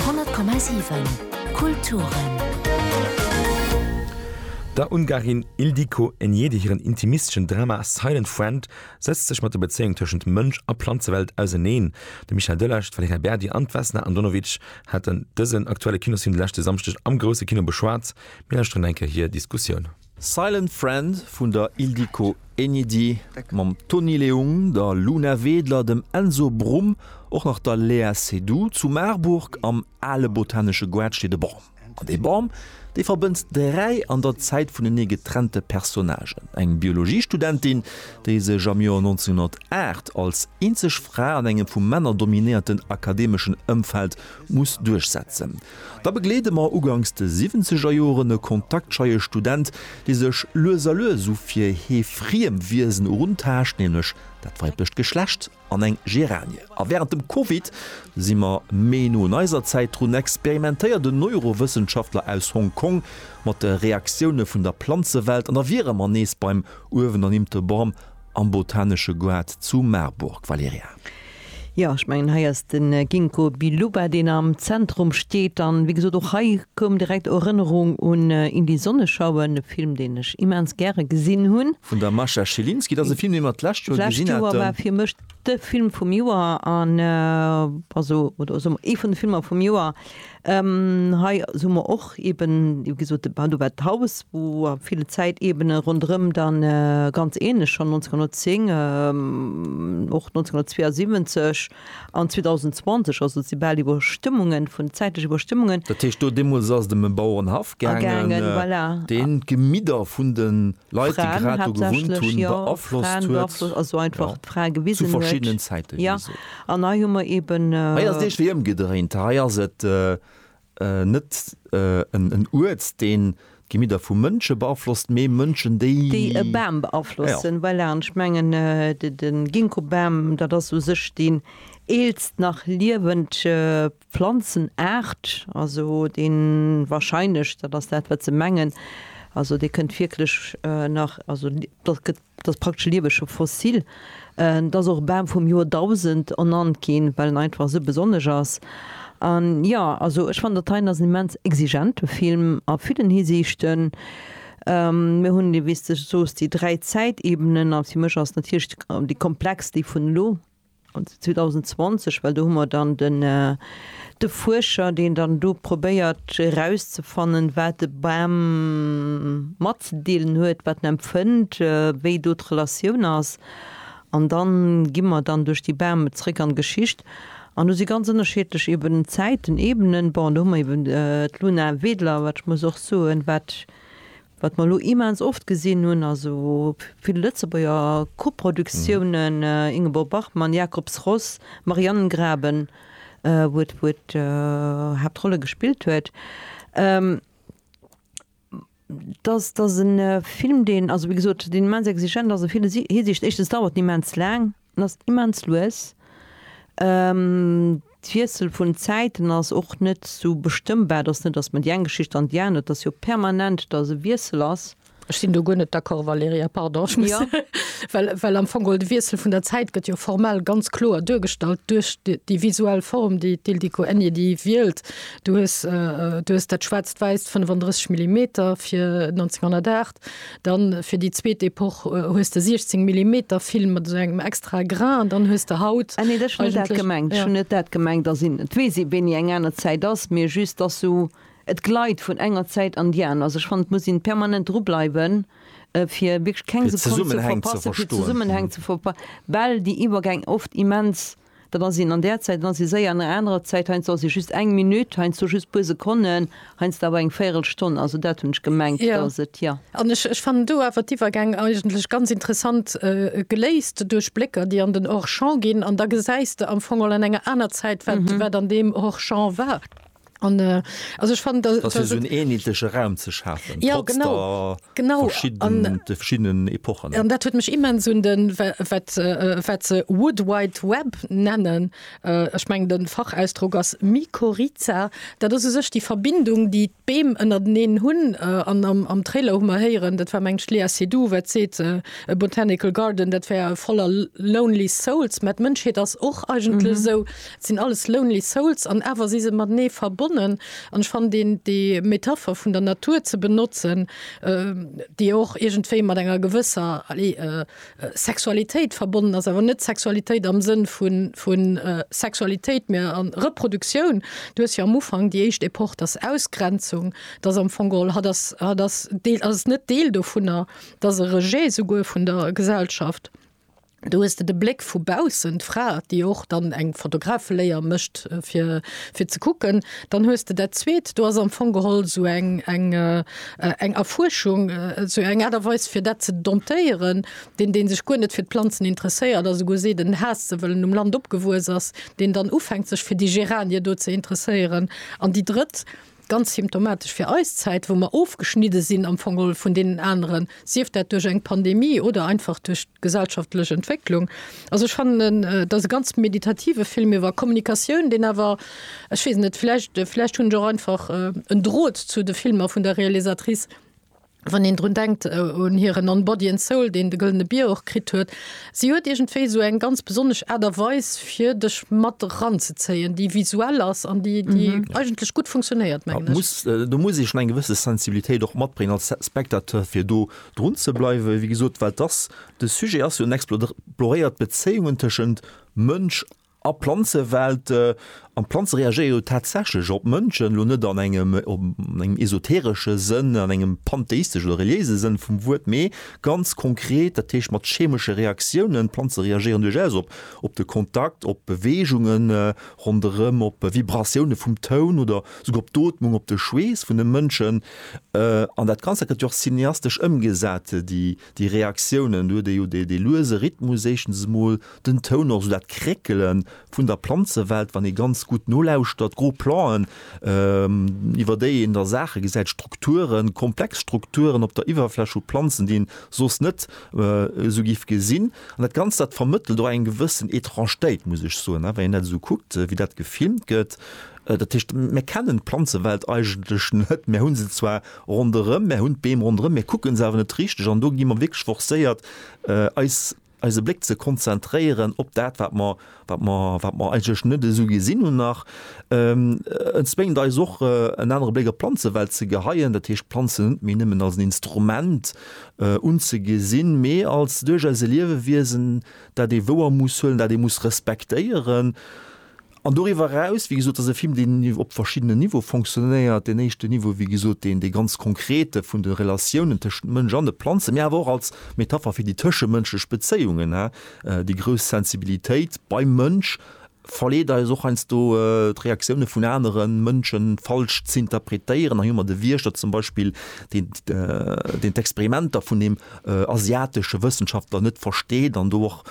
100,7 Kulturen. Der Ungarin Ildiko Enyedi hiren intimistesche Drama Silent Friend sëtzt sech mat der Bezéiung tëschent Mënsch a Planzewelt auseneen. De Michel Delage, d'Valerija Berdi an d'Vesna Andonovic haten dësen aktuelle Kinosfilm de leschte Samschdeg am Grousse Kino beschwat. Mir lauschteren eng Kéier hir Diskussioun. Silent Friend vun der Ildiko Enyedi mam Tony Leung, der Luna Wedler, dem Enzo Brumm, och nach der Léa Seydoux. Zu Marburg am ale botanesche Goart steet e Bam. An dee Bam, dee verbënnt dräi an der Zäit vunenee getrennte Personnagen, eng Biologiestudentin, déi sech am Joer 1908 als eenzeg Fra an engem vu Männer dominéierten akademeschen Ëmfeld muss duerchsetzen, Da begleede mer uganks de siwwenzeger Joren e kontaktscheie Student, dee sech lues a lues u fir hee friem Wiesen eruntaascht, nämlech dat weiblecht Geschlecht an eng Geranie. A wärend dem Covid si mer méi no un eiser Zäit drun, experimentéiert en Neurowëssenschaftler aus Hong Kong mat de Reaktioune vun der Planzewelt an da wiere mer nees beim uewenernimmte Bam Am Botanesche Goart zu Marburg, Valerija. Jo, ech mengen hei ass den Ginkgo Biloba deen am Zentrum steet, an wéi gesot och hei koum direkt Erënnerung un In die Sonne schauen, e Film deen ech immens gäre gesinn hunn. Vun der Mascha Schilinski, dat ass e Film deen mer d'lescht Joer gesinn haten. D'lescht Joer war fir mech de Film vum Joer, an also oder ee vun de Filmer vum Joer. Hei hu mer och eben gesot, de Bau, do war d'Haus, wou a ville Zäitebene ronderëm dann ganz ähnlech schonn 1910, och 1972 an 2020, also et si bal Iwwerstëmmungen vun, zäitlech Iwwerstëmmungen. Dat heescht do deemools ass et ëm e Bauerenhaff gaangen, deen d'Gemidder vun de Leit, déi grad do gewunnt hunn, beaflosst huet, jo, zu verschiddenen Zäite, wéi gesot. Hei ass et eescht wéi ëmgedréint. Hei ass et net en Uert, deen d'Gemidder vu Mënsche beaflosst, mee Mënschen, déi. Déi e Bam beaflossen, voilà. An ech mengen, de Ginkgobam, dat ass u sech deen eelst nach liewend Planzenaart, also dee wahrscheinlech, dat ass dat, wat se mengen, also dee kënnt wierklech nach, also dat gëtt, dat ass praktesch lieweg, scho fossil. Et ass och Bam vum Joerdausend ernannt ginn, well en einfach esou besonnesch ass. An jo, also ech fannen, dat hei ass en immens exigente Film a villen Hisiichten. Mir hunn, wéi s de soos, déi dräi Zäitebenen, a fir mech ass natierlech déi komplexst déi vun elo. an 2020, well do hu mer dann de Fuerscher, deen dann do probéiert erauszefannen, wat de Bam matzedeelen huet, wat en empfënnt, wéi do d'Relatioun ass. An da gi mer dann duerch déi Bäume zréck an d'Geschicht an do si ganz ënnerschiedlech eeben Zäiten, Ebenen. Bon, do hu mer eeben d'Luna Wedler, wat ech muss och soen, wat Wat mer elo immens oft gesinn hunn, also vill Lëtzebuerger Koproduktiounen, Ingeborg Bachmann, Jacob's Ross, Marianengraben, wou et d'Haaptrolle gespillt huet, dass e Film, deen, also wéi gesot, deen immens exigent ass a vill Hisiicht, éischtens dauert en immens laang, En ass immens lues. D'Wiessel vun den Zäiten ass och net sou bestëmmbar. Et ass net, datt mer déi eng Geschicht an déi aner, et ass jo permanent, datt e Wiessel ass. Ech sinn do guer net d'accord, Valerija, pardon. Ech muss, well, well am Fong geholl de Wiessel vun der Zäit gëtt jo formell ganz kloer duergestallt duerch déi visuell Form, déi d'Ildiko Enyedi déi wielt. Du hues, du hues dat schwaarzt-wäisst 35 Millimeter fir 1908, Effekt. Dann fir déi zweet Epoch hues de 16 Millimeter Film mat esou engem extra Grain an dann hues de haut. Ah nee, ech hunn net dat gemengt. Ech hunn net dat gemengt, dass een, et weess ee wéini eng aner Zäit ass, mee just dass sou, et gleit vun enger Zäit an déi aner. Also ech fannen, et muss een permanent dru bleiwen, fir wierklech keng Sekonn ze verpassen, fir d'Zesummenhäng ze verpassen, well déi Iwwergäng oft immens dann ass een an där Zäit, dann ass ee séier an enger anerer Zäit, heiansdo ass ee just eng Minutt, heiansdo just puer Sekonnen, heiansdo awer eng Véirelstonn. Also dat hunn ech gemengt, datt et, jo. An ech fannen do awer d'Iwwergäng eigentlech ganz interessant geléist duerch Blécker, déi an den Hors-champ ginn, an da gesäis de am Fong all an enger aner Zäit, wat an deem Hors-champ war. An äh, also ech fand, dass, dass so einen ähnliche Raum zu schaffen, ja, trotz genau, der genau. Verschieden, an, de verschiedenen Epochen. An dat huet mich immens un den wat se Wood Wide Web nennen. Äh, ech meng den Fachausdruck ass Mykorrhiza. Dat ass u sech déi Verbindung, déi d'Beem ënnerteneen hunn. Äh, an am, am Trailer hu mer héieren, dat war meng Lea Seydoux, wat seet äh, e Botanical Garden, dat wär voller Lonely Souls. Mä d'Mënschheet ass och eigentlech mhm. esou. Et sinn alles lonely souls an awer si se matenee verbonnen. An ech fannen deen déi Metapher vun der Natur ze benotzen, déi jo och iergendwéi mat enger gewësser, allez, Sexualitéit verbonnen ass, awer net Sexualitéit am Sënn vu Sexualitéit, mä a Reproduktioun. Du hues jo am Ufank déi éischt Epoch, dass Ausgrenzung, dass am Fong geholl hatt ass, hatt ass deel, ass net Deel dovunner, dass e Rejet souguer vun der Gesellschaft, Do hues de de Bléck vu baussen, d'Fra, déi och dann eng Fotografeléier mécht, fir, fir ze kucken. Dann hues de dat Zweet, do ass am Fong geholl esou eng, eng, eng Erfuerschung, esou eng Aart a Weis, fir dat ze domptéieren. Deen, dee sech guer net fir d'Planzen interesséiert a souguer seet, en haasst se, well en um Land opgewuess ass, deen dann ufänkt, sech fir déi Geranie do ze interesséieren. An déi Drëtt, Ganz symptomatesch fir eis Zäit, wou mer ofgeschnidde sinn am Fong och vun deenen aneren, sief dat duerch eng Pandemie oder einfach duerch d'gesellschaftlech Entwécklung. Also ech fannen, et ass e ganz meditative Film iwwer Kommunikatioun, deen awer, ech weess et net, vläicht, vläicht hunn ech och einfach en Drot zu de Filmer vun der Realisatrice, Wann een drun denkt un hiren On Body and Soul, deen de Gëllene Bier och kritt huet, si huet iergendwéi esou eng ganz besonnesch Aart a Weis fir dech mat eranzezéien, déi visuell ass an déi eigentlech gutt funktionéiert, mengen ech. Do muss ee schonn eng gewësse Sensibilitéit och matbréngen als Spectateur, fir do drun ze bleiwen, wéi gesot, well dass de Sujet ass jo en exploréiert d'Bezéiungen tëschent Mënsch A Planzewelt, an d'Planze reagéiere jo tatsächlech op d'Mënschen, elo net an engem esoteresche Sënn, an engem pantheistesche oder reliéise Sënn vum Wuert, mee ganz konkret, dat heescht mat chemesche Reaktiounen. D'Planze reagéieren duerchaus op de Kontakt, op Beweegunge ronderëm, op Vibratioune vum Toun oder esouguer op d'Ootmung, op de Schweess vun de Mënschen. An dat Ganzt, dat gëtt jo och cineastesch ëmgesat. Déi Reaktiounen, do huet ee jo dee luese Rhythmus éischtens emol, den Toun och, esou dat Kréckele vun der Planzewelt, wann ee ganz gutt nolauschtert, gro Planten, iwwer déi een da Saache gesäit, Strukturen, komplex Strukturen op der Iwwerfläch vu Planzen, déi een soss net esou giff gesinn. An dat Ganzt, dat vermëttelt och eng gewëssen Étrangetéit, muss ech soen, wann een dat esou kuckt, wéi dat gefilmt gëtt. Dat heescht, mir kennen d'Planzewelt eigentlech net, mir hu se zwar, Ronderëm, mär hunn d'Beem ronderëm, mär kucke se awer net richteg an do gi mer wierklech forcéiert eis eise Bléck ze konzentréieren op dat wat mer wat mer wat mer eigentlech net esou gesinn hunn nach. Et zwéngt eis och en anere Bléck op d'Planzewelt ze geheien, dat heescht d'Planzen net méi nëmmen als en Instrument unzegesinn, mee als duerchaus e Liewewiesen dat ee wouer muss huelen, dat ee muss respektéieren. An doriwwer eraus, wéi gesot, ass e Film, deen op verschiddenen Niveaue fonctionnéiert. Deen éischten Niveau, wéi gesot, deen, dee ganz konkrete vun de Relatiounen tëschent Mënsch an de Planzen, mee awer och als Metapher fir déi tëschemënschlech Bezéiungen. Déi grouss Sensibilitéit beim Mënsch verleet eis och heiansdo, d'Reaktioune vun anere Mënschen falsch z'interpretéieren. Hei hu mer de Wiechter zum Beispill, deen, deen d'Experimenter vun deem asiatesche Wëssenschaftler net versteet an do och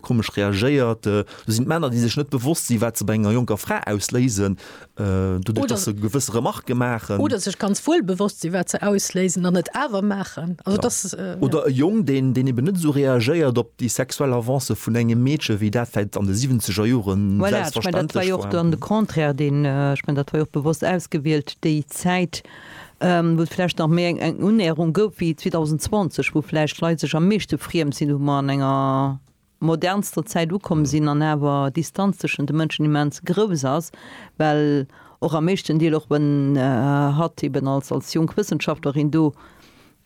Komesch reagéiert. Do sinn d'Männer, déi sech net bewosst sinn, wat se bei enger jonker Fra ausléisen, doduerch datt se gewësse Remarke maachen. Oder sech ganz wuel bewosst sinn, wat se ausléisen an et awer maachen. Also datt, ja. Oder e Jong, deen eeben net esou reagéiert op déi sexuell Avancë vun engem Meedche wéi dat vläicht an de siwwenzeger Jore selbstverständlech war. Voilà, ech menn, dat war jo och dann de Contraire, deen, ech menn, dat war jo och bewosst ausgewielt, déi Zäit. wou et vläicht nach méi eng Unnäherung gouf wéi 2020, wou vläicht d'Leit sech am meeschte friem sinn, wou mer an enger modernster Zäit ukomm sinn an awer d'Distanz tëschent de Mënschen immens grouss ass, well och am meeschten Deel, och wann hatt eeben als jonk Wëssenschaftlerin do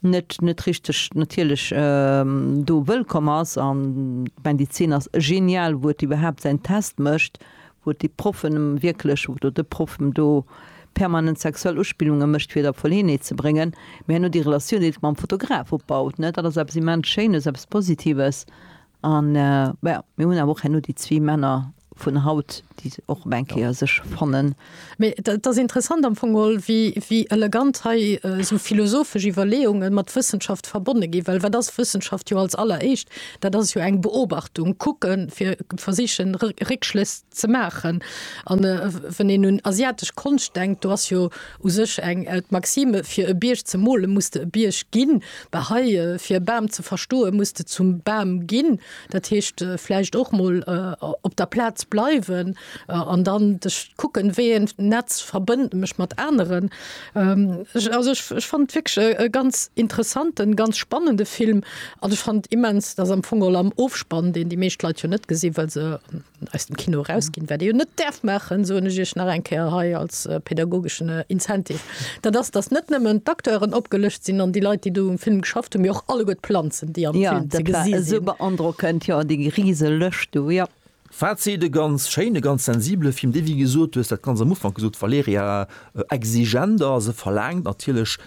net net richteg natierlech do wëllkomm ass an ech mengen déi Zeen ass genial wou et iwwerhaapt säin Test mécht wou et déi Proffen em wierklech oder de Proff em do permanent sexuell Uspillunge mécht fir et a Verleeënheet ze bréngen mee herno déi Relatioun déi et mam Fotograf opbaut ne dat ass eppes immens Schéines eppes Positives an jo mir hunn awer och herno déi zwee Männer vun haut, déi se och ëm eng Kéier sech fannen. Mee et ass interessant am Fong geholl, wéi elegant hei esou philosophesch Iwwerleeunge mat Wëssenschaft verbonne ginn. Well wat ass Wëssenschaft jo als alleréischt? Dat ass jo eng Beobachtung, kucken, fir versichen, Réckschlëss ze maachen. A wann een un asiatesch Konscht denkt, do ass jo u sech eng d'Maxime, fir e Bierg ze mole muss de e Bierg ginn. Bah hei, fir e Bam ze verstoe muss de zum Bam ginn. Dat heescht vläicht och mol op der Plaz bleiwen an dann dech kucken, wéi een Netz verbënnt mech mat aneren. Also ech ech fannt wierklech e ganz interessanten, ganz spannende Film an ech fannt immens, datt am Fong och am Ofspann, deen déi meescht Leit jo net gesinn, well se aus dem Kino erausginn, wat ee jo net däerf maachen, soen ech Iech nach eng Kéier hei als pädagogeschen Incentive, dat ass, datt net nëmmen d'Acteuren opgelëscht sinn an déi Leit, déi do um Film geschafft hunn, mee och alleguer d'Planzen, déi am Film ze gesinn sinn. Jo, dat war esou beandrockend, jo, déi rise Lëscht do, jo. Fazit, E ganz schéinen, e ganz sensibele Film, dee, wéi gesot, du hues dat ganz am Ufank gesot, Valerija, exigent ass. E verlaangt natierlech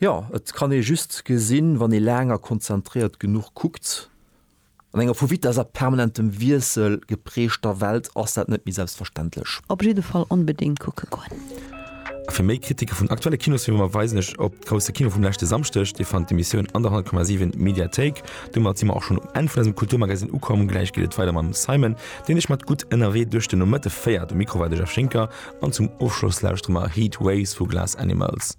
Jo, et kann ee just gesinn, wann ee laang a konzentréiert genuch kuckt. An enger vu Vitess a permanentem Wiessel geprägter Welt ass dat net méi selbstverständlech. Op jidde Fall onbedéngt kucke goen! A fir méi Kritike vun aktuelle Kinosfilmer verweisen ech op d'Grousse Kino vum leschte Samschdeg. Dir fannt d'Emissioun an der 100,7 Mediathéik. Domat si mer och schonn um Enn vun eisem Kulturmagazine ukomm. Gläich geet et weider mam Simon, deen iech mat gutt ënnerwee duerch den Nomëtte féiert. Um Mikro war de Jeff Schinker an zum Ofschloss lauschtere mer Heat Waves vu Glass Animals.